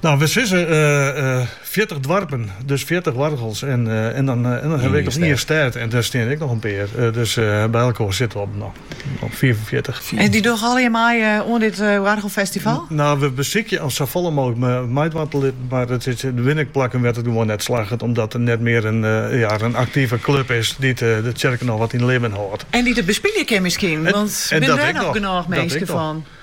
Nou, we sizze fjirtich doarpen, dus fjirtich oargels en dan hawwe we ek noch ien stêd en dêr stean ek noch in pear. Dus by elkoar sitte we op op fiifenfjirtich. En dy dogge allegear mei oan dit oargelfestival? Nou, we besykje om safolle mooglik meidwaan te litten, mar der binne ek plakken wêr't it gewoan net slagget, omdat der net mear in aktive klup is dy't de tsjerke noch wat yn libben hâldt. En dy't it bespylje kin miskien, want binne dêr noch genôch minsken fan?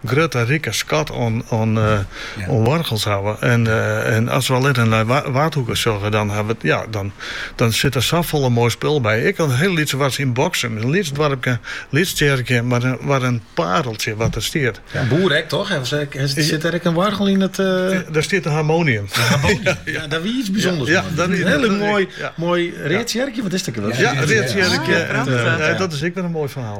grutte rike skat oan oargels hawwe. En as we allinne nei Waadhoeke sjogge, dan ha we, ja, dan sit der safolle moai spul by. Ek in hiel lyts wars yn Boksum, in lyts doarpke, lyts tsjerkje, mar wat in pareltsje wat der stiet. Yn Boer ek toch? Sit der ek in oargel yn it? Der stiet in harmonium. In harmonium, ja, dat wie iets bysûnders. Ja, dat wie. In hiel moai, moai read tsjerkje, wat is it ek alwer? Ja, read tsjerkje. Prachtig. Dat is ek wer in moai ferhaal.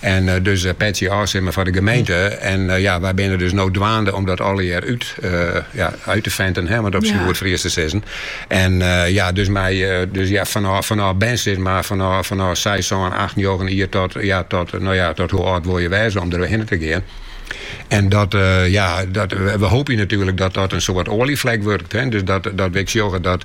En dus petsje ôf, sis mar, foar de gemeente. En ja, wy binne dus no dwaande om dat allegear út, ja, uit te venten, hè, om it op syn goed Fries te sizzen. En ja, dus mei, dus ja, fanôf, fanôf bern sis mar, fanôf, fanôf 6, 7, 8, 9 jier tot, ja, tot, nou ja, tot hoe âld wol je wêze om der hinne te gean. En dat, eh, ja, dat, we hoopje natuerlik dat dat in soart oaljeflek wurdt. Hè? Dus dat, dat we sjogge dat